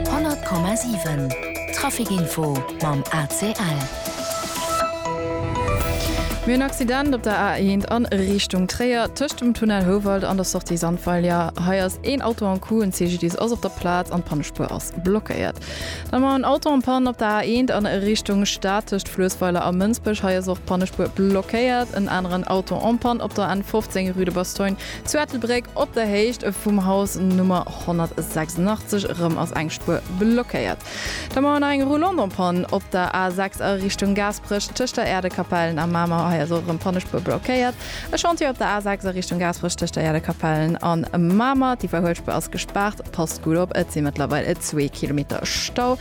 100,7 Trafic Info mam ACL. Mir hunn Accident op der A1 a Richtung Tréier, tëscht dem Tunnel Houwald an der Sortie Sandweiler. Hei ass een Auto en coup, en CGDIS ass op der Plaz an d'Pannespuer ass blockéiert. Dann mar en Auto en panne op der A1 a Richtung Stad, tëscht Fluessweiler a Mënsbech. Hei ass och d'Pannespuer blockéiert. En aneren Auto en panne op der N15, rue de Bastogne. Zu Ettelbréck op der Héicht vum Haus Nummer 186 erëm ass eng Spuer blockéiert. Da mauer nach eng Roulante en panne op der A 6 a Richtung Gaasperech. Tëscht der Äerdekapellen a Mamer, hei ass och erëm d'Pannespuer blockéiert. E Chantier op der A 6 a Richtung Gaasperech tëscht der Äerdekapellen a Mamer. D'Iwwerhuelspuer ass gespaart, passt gutt op, et si mëttlerweil zwee Kilometer Stau.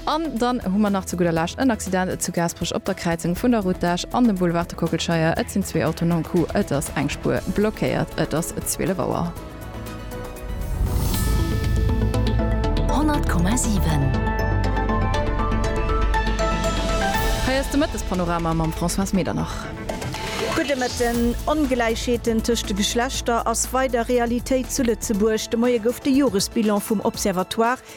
An dann hu mer nach zu gudder Lescht en Accident zu Gaasperech op der Kräizung vun der Route d'Esch an dem Boulevard de Kockelscheier. Et sinn zwee Autoen am Coup, et ass eng Spuer blockéiert. Et ass 12 Auer. 100,7. Hei ass de Mëttespanorama mam Françoise Medernach. Gudde Mëtten. Ongläichheeten tëscht de Geschlechter ass weider Realitéit zu Lëtzebuerg. De Moie gouf de Joresbilan vum Observatoire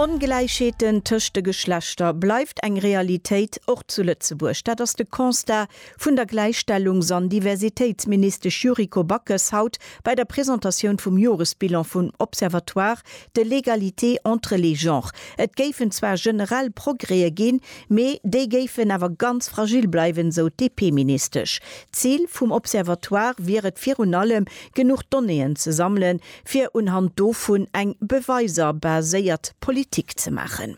Ongläichheeten tëscht de Geschlechter bleift eng Realitéit, och zu Lëtzebuerg. Dat ass de Constat vun der Gläichstellungs an Diversitéitsministesch Yuriko Backes haut bei der Presentatioun vum Joresbilan vum Observatoire de l'égalité entre les genres. Et géifen zwar generell Progrèe ginn, mee déi géifen awer ganz fragil bleiwen, esou d'DP-Ministesch. Zil vum Observatoire wier et virun allem, genuch Donnéeën ze sammelen, fir unhand dovun eng beweiser baséiert Politik ze maachen.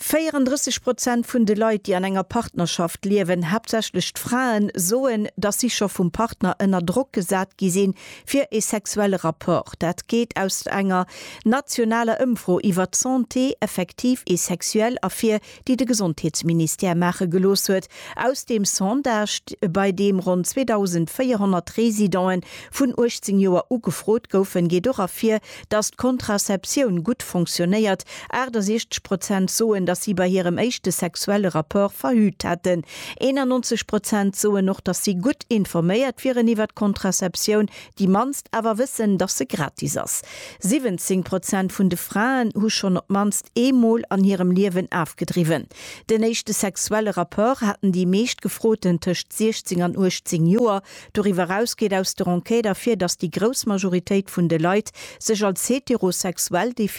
34 Prozent vun de Leit, déi an enger Partnerschaft liewen, haaptsächlech d'Fraen, soen, dass si scho vum Partner ënner Drock gesat gi sinn, fir ee sexuelle Rapport. Dat geet aus enger nationaler Ëmfro iwwer d'Santé effective et sexuelle ervir, déi de Gesondheetsministère maache gelooss huet, aus deem Sondage, bei deem ronn 2.400 Residente vun 18 Joer u gefrot goufen, geet och ervir, datt d'Contraceptioun gutt fonctionnéiert. 68 Prozent soen, datt si bei hirem éischte sexuelle Rapport verhüt hätten. 91 Prozent soen och, datt si gutt informéiert wieren iwwer d'Contraceptioun, Déi mannst awer wëssen, dass se gratis ass. 17 Prozent vun de Fraen hu schonn op d'mannst eemol an hirem Liewen afgedriwwen. Den éischte sexuelle Rapport haten déi meescht Gefroten tëscht 16 an 18 Joer. Doriwwer eraus geet aus der Enquête ervir, dass déi grouss Majoritéit vun de Leit sech als heterosexuell definéieren.